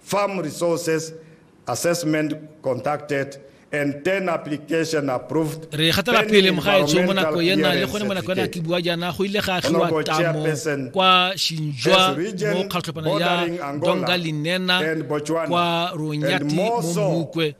Farm Resources Assessment Conducted and 10 Application Approved. Re gatela pele mogaetsho mo nako ena le gone mo nako ena ke bua jaana go ile ga agiwa tamo kwa Shinjwa mo kgatlhopana ya Donga Linena kwa Ronyati mo Mukwe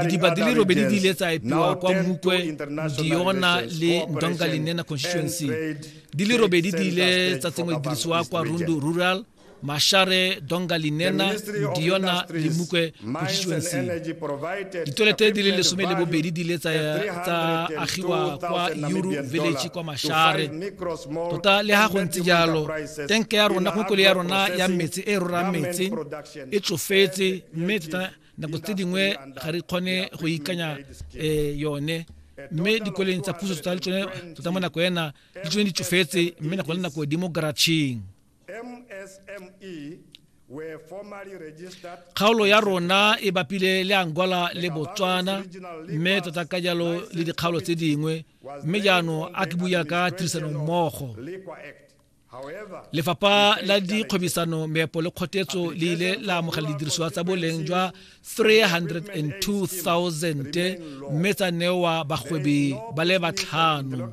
didiba di le robedi di ile tsa epiwa kwa Mukwe Diona le Donga Linena constituency di le robedi di ile tsa tsenngwa dirisiwa kwa Rundu Rural mashare donga linena diona limukwe constituency ditolete di le lesome le bobedi di le tsa agiwa kwa euro village kwa mashare tota le ga go ntse jalo tenke ya rona kgokole ya rona ya metsi e rora metsi e tsofetse mme tota nako tse dingwe ga re kgone go ikanya um yone mme dikoleng tsa puso tota le tsone tota mo nako ena le tsone di tsofetse mme nako le nako di mo garacheng kgaolo ya rona e bapile le angola le botswana mme tota ka jalo le dikgaolo tse dingwe mme jaanong a ke buya ka tirisanommogo lefapha la dikgwebisano meepo le kgotetso le ile la amogela didirisiwa tsa boleng jwa 302000 mme tsa newa bagwebi ba le batlhano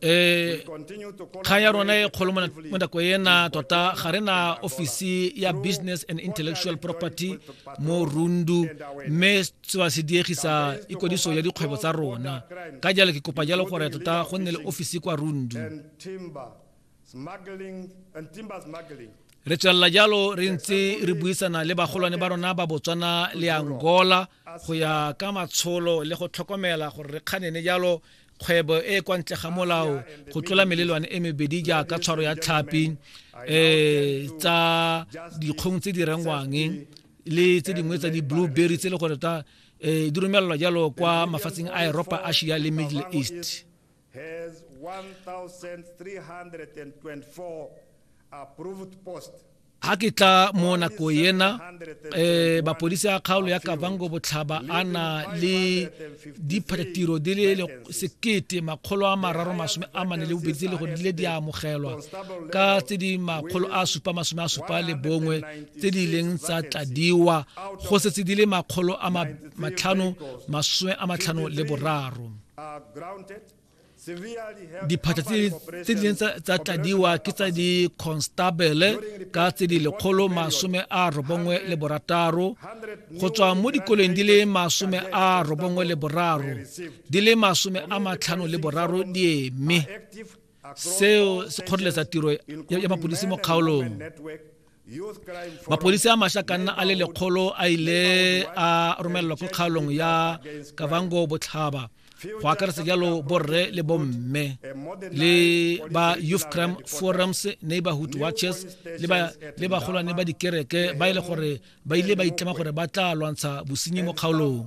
e kgang ya rona e kgolo mo nako ena tota ga re na ofisi ya business and intellectual property mo rundu mme seba se diegisa ikwadiso ya dikgwebo tsa rona ka jalo ke kopa jalo gore tota go nne le ofisi kwa rundu re tswelela jalo re ntse re buisana le bagolwane ba rona ba botswana le angola go ya ka matsholo le go tlhokomela gore re kganene jalo kgwebo e e kwa ntle ga molao go tlola melelwane e mebedi jaaka tshwaro ya tlhapi um tsa dikgong tse di rengwang le tse dingwe tsa di-blue berry tse e le gore ta um di romelelwa jalo kwa mafatsheng a eropa asia le middle east has 1,324 approved posts. Ha ke tla mo nako ena eh mapodisi a kgaolo ya Kavango Botlhaba a na le diphatiro di le sekete makgolo a mararo masome a mane le bobedi le go dile di amogelwa ka tse di makgolo a supa masome a supa le bongwe tse di leng tsa tladiwa go setse di le makgolo a matlhano masome a matlhano le boraro diphatlha tse di neng tsa tladiwa ke tsa di-constabele ka tse di lekgolo masome a robongwe le borataro go tswa mo dikoleng di le masome a robongwe le boraro di le masome a matlhano le boraro di eme seo se kgoreletsa tiro ya mapodisi mo kgaolong mapodisi a masha ka nna a le lekgolo a ile a romelelwa ko kgaolong ya kavango botlhaba go akaretsa jalo borre le bomme le ba youth crime forums neighborhood watches le bagolwane ba dikereke ba e le gore ba ile ba itlema gore ba tla lwantsha bosenyi mo kgaolong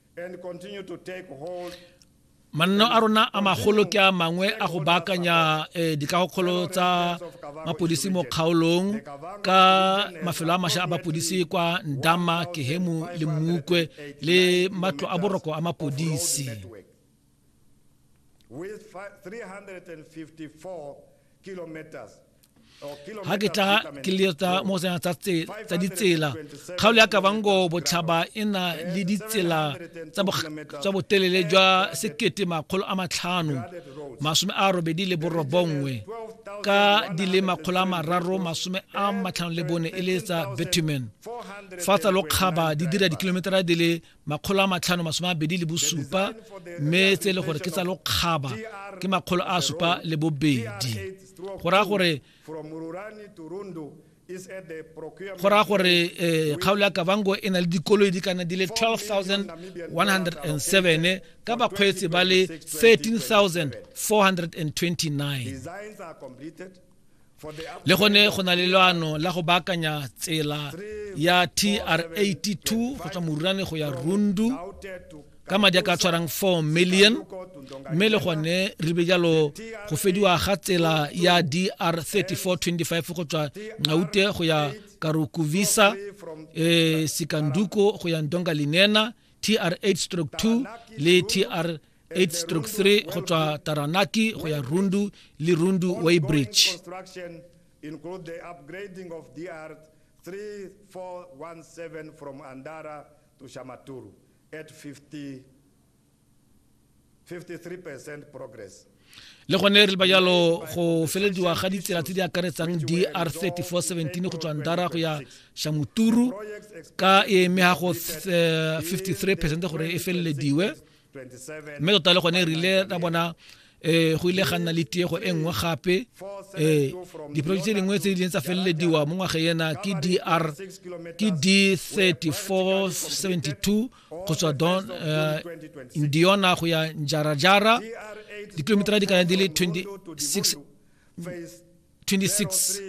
manno a rona a magolo ke a mangwe a go baakanya eh, dikagokgolo tsa mapodisi mo kgaolong ka mafelo a masha a bapodisi kwa ndama kehemu le mmukwe le matlo a boroko a mapodisi ga ke tla ke letsa mo sena tsa ditsela kgaolo ya kabango botlhaba e na le ditsela tsa botelele jwa sekete makgolo a matlhano masome a robedi le borobongwe ka di le makgolo a mararo masome a matlhano le bone e le tsa bitumen fa tsa lokgaba di dira dikilometara di le makgolo a matlhano masome a bedi le bosupa mme tse e le gore ke tsa lokgaba ke makgolo a supa le bobedi go raya gore go raya gore eh, kgaolo ya kavango e na le dikoloi di kana di le 12107 ka bakgweetsi ba le 13429 le gone go na le leano la go baakanya tsela ya tr82 go tswa morurane go ya rundu ka madi a ka tshwarang 4 million mme le gone re be jalo go fediwa ga tsela ya dr 3425 go tswa ngaute go ya karukuvisa e sikanduko go ya ndonga linena tr 8 stroke 2 le tr 8-3 go tswa taranaki go ya rundu le rundu weybridge include the upgrading of DR 3417 from Andara to Shamaturu at 50 53% progress. le gone re ba jalo go felediwa ga ditsela tse di akaretsang dr 3417 go tswang dara go ya shamuturu ka e eme ga go 53 eh, percent gore e felelediwe mme tota le gone e rile ra bona eh go ile ga nna le tiego e nngwe gape eh diprojeke tse dingwe tse di tsa felelediwa mo ngwaga ena ke DR ke D3472 go tswa don eh, Indiana go ya Njarajara dikilomita di kana di le 26 26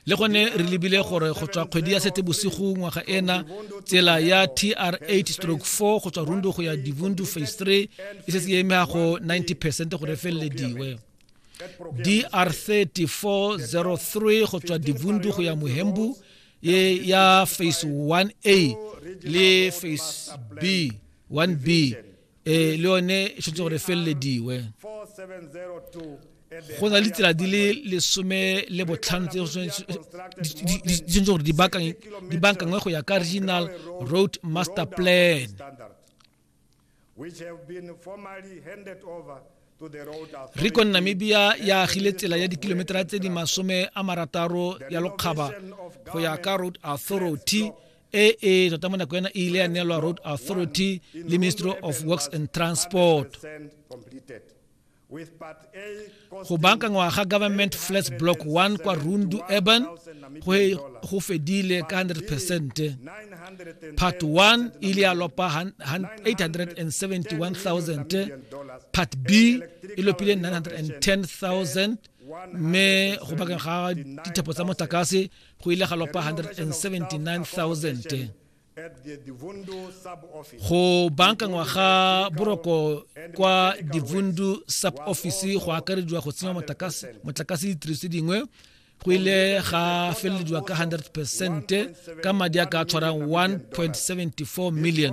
le gone re lebile gore go tswa kgwedi ya sete bosigo ngwaga ena tsela ya tr 8 stroke 4 go tswa rundu go ya divundu phase 3 e setse e emega go 90 percent gore e felelediwe dr 3403 go tswa divundu go ya mohembu ye ya phase 1a le phase b 1b ee le yone e tshwanetse gore e felelediwe go na le ditsela di le lesome le botlhano tse di tshwanetse gore di bankangwe go ya ka regional road master plan recon namibia ya agile tsela ya dikilometera tse di masome a marataro ya lokgaba go ya ka road authority e e tota mo nako ena e ile ya neelwa road authority le ministry of works and transport go bankangwa ga government flats block 1 kwa rundu urban go fedile ka 100 percent part 1 e ile ya lopa 871000 part b e lopile 910000 mme go bakeng ga dithapo tsa motlakase go ile ga lopa 179000 go bankangwa ga boroko kwa divundu sub office go akarediwa go tsenya motlakase ditiriso dingwe go ile ga felelediwa ka 100 percent ka madi a ka tshwarang 1.74 million